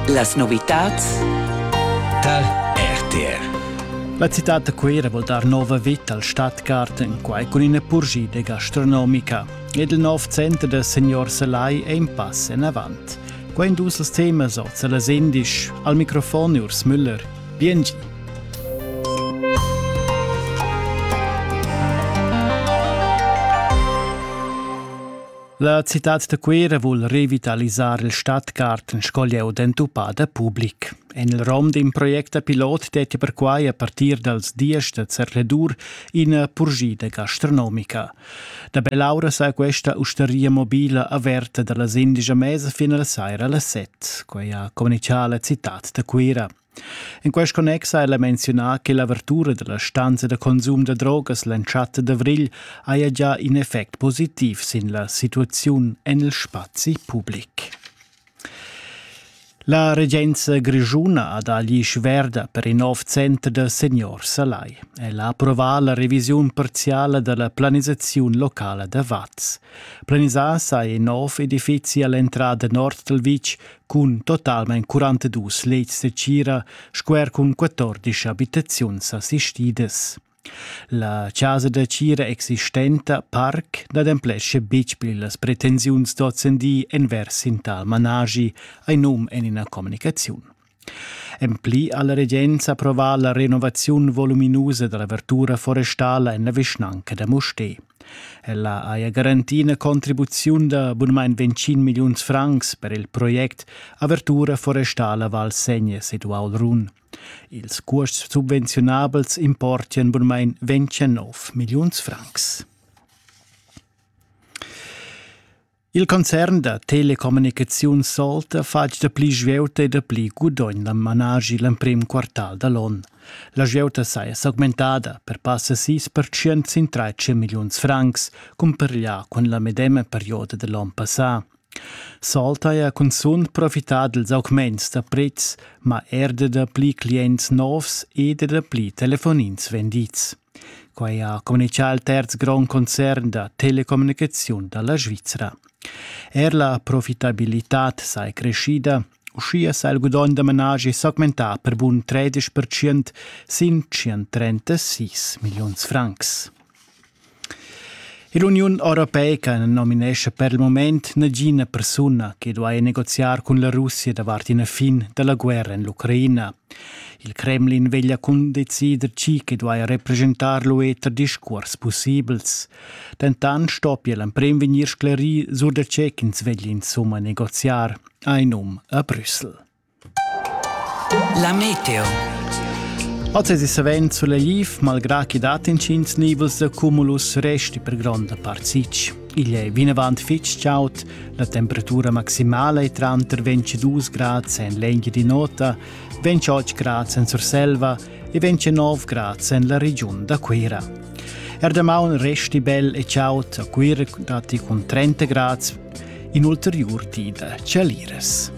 Las novitads tar RTR. La citad da Cuira vuol dar nova vita al Stadtgarten, quai cun ina purschida gastronomica. Ed il nov center da signor Salai è in pass en avant. Quai in dus temas oz a las Indisch. Al microfon Urs Müller. Biengi. La citad da Cuera vul revitalisar il Stadtgarten sco leu d'entupada public. En il rom d'un project pilot detti perquai a partir dals dies da Zerledur ina purgida gastronomica. Da Belaura sa questa usteria mobila averta dalla sindica mesa fin alla saira alle set, quai ha communicato la citad da Cuera. In quest connex ha ella menziunà che l'avertura dalla stanza da consum da drogas l'entschatta d'avrigl haja già in effect positiv sin la situaziun en il spazi public. La regenza grischuna ha dà l'isch verda per in nov center da seniors a Lai. El ha approvà la revisiun parziala da la planisaziun locala da Vaz. Planisà saja in nov edifizi all'entrada nord dal vitg cun totalmein 42 lets de cira sco er cun 14 abitaziuns assistidas. La casa da cira existenta parc n'ademplesce betg pli las pretensiuns d'ozendi envers in tal managi ai num en ina comunicaziun. En pli ha la regenza approvà la renovaziun voluminusa della verdura forestala en la vischnanca da Mustè. Ella haja garantì ina contribuziun da bunmain ventschin milliuns francs per il project Avertura forestala Val Segna sid Uaul Run. Ils cuosts subvenziunabels importian bunmain ventschenov milliuns francs. Il concern da telecommunicaziuns Solta fatg da pli svieuta e da pli gudogn da managi l'emprim quartal da l'on. La svieuta saja s'augmentada per passa 6% sin 13 milliuns francs, cumpareglià cun la medema perioda da l'on passà. Solta ha cunzunt profità dals augments da prezs, ma er da pli clients novs e da pli telefonins vendids. Quai ha communitgà il terz grond concern da telecommunicaziun da la Svizra. Er la profitabilitad sai creschida, uschia sa il gudogn da managi s'augmentà per bun 13% sin 136 milliuns francs. L'Uniun europeica na nominescha per il moment nagina persuna che duai negoziar cun la Russia davart ina fin da la guerra en l'Ucraina. Il Kremlin veglia cundecider tgi che duai represchentar l'UE tar discuors pussibels. Dentant stoppia l'emprim vegnir sclerì sur da tge ch'ins veglia insumma negoziar, hai num a Brüssel. La meteo. Oz è savens sulegliv, malgrà che dat intgins nivels da cumulus resti per gronda part sitg. Igl è vinavant fitg chaud, la temperatura maximala è tranter 22 grads en l'Engiadi Nota, 28 grads en Surselva e 29 grads en la regiun da Cuira. Er damaun resti bel e chaud a Cuira datti cun 30 grads in ulteriur di da chalires.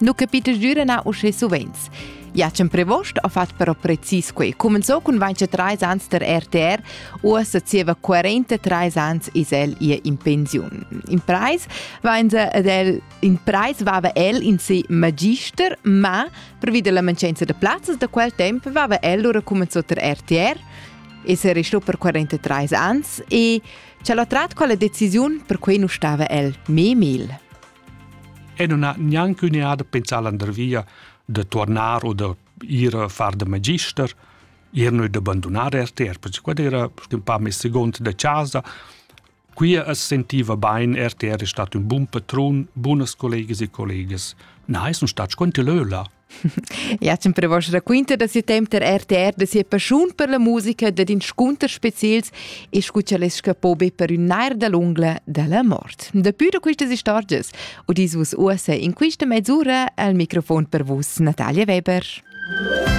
Nu capita giura na uschè suvenz. Jacem Prevost ha fatg però precis quei. Cumenzò cun 23 ans der RTR, uossa zieva 43 ans is el ihr in pensiun. In preis va in, del, in preis vava el in si magister, ma previd la mancanza de plazzas da quel temp vava el lura cumenzò der RTR, e se restò per 43 ans e ce l'ha trat quella decisiun per cui nu stava el memil. E non ha gnanc üneada pensà landervia da tuornar o da ir a far da magister, ir noi da bandunar RTR, perché quad era ün pa meis segund da chasa. Qui as sentiva bain, RTR è stat ün bun patrun, bunas collegas e collegas. Na, sun stats quanti lö là. Ja, zum per vos raquinta da siu temp der RTR da sia passiun per la musica dad inscunters specials e scucha les scapo be per un nair da l'ungla della mort. Dapi da quistas istorgias udis vus uossa in quista mezz'ura al microfon per vus Natalia Weber.